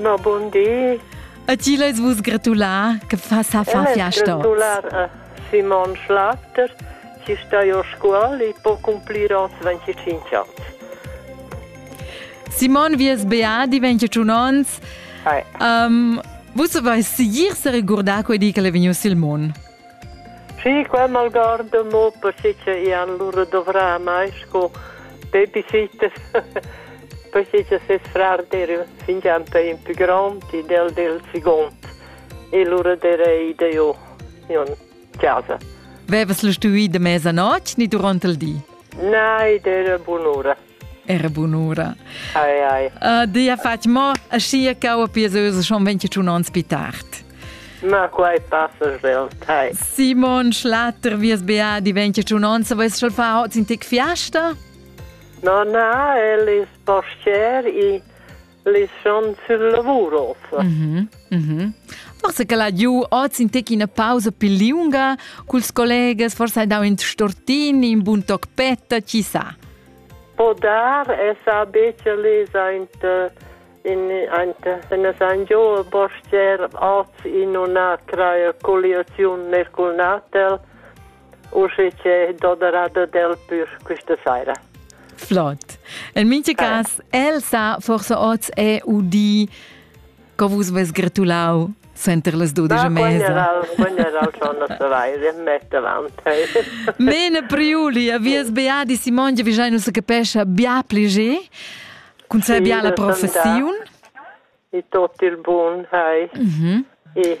Ma bon di. E ti lez vus gratular che fa sa far fiasta. Gratular a Simon Schlafter, ci stai a scuola e può cumplire os 25 anni. Simon, vi es beà di 21 anni. Um, vus avais sicur se ricordar quei di che l'è vegniu sil mond? Schi, qua malgarda mo perche cha i han lura dovrà mai sco babysittas perche cha ses frar d'eira fingià pè ün pü grond ed el del seguond e lura d'eirei da jo in chasa. Vevas lu stuvü da mezanotg ni durant il di? Na, ed era bun'ura. Era bunura. Ai, ai. Uh, dia fatg mo, ascia cau a pieseuse schon 21 ans pi tard. Ma quai passa svelt, hai. Simon Schlatter, vies bea di 21 ans, avais schon fa hoz in tec fiasta? No, na, el is postier i Lischan sil lavur ossa. Mhm, mhm. Forse che la giu oz in tec ina pausa più liunga, culs collegas forse hai dau in stortin, in bun toc petta, chi sa. Po dar es a bece lesa in in in San Gio Borger oz in una crea coliaziun nel natel usche che doderada del pür questa saira. Flott. In minche cas, el sa forse oz è udì co vus ves gratulau center les dudice mesa. Mene Priuli, a vies beadi Simon, vi già non se capesce bia plege, con sa bia la professione. E tot il buon, hai. Mhm. E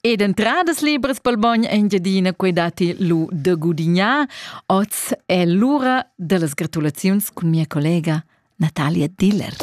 Ed entradas libras pel bogn Engiadina quei datti lu da gudignar. Oz è l'ura dellas gratulaziuns cun mia collega Natalia Diller.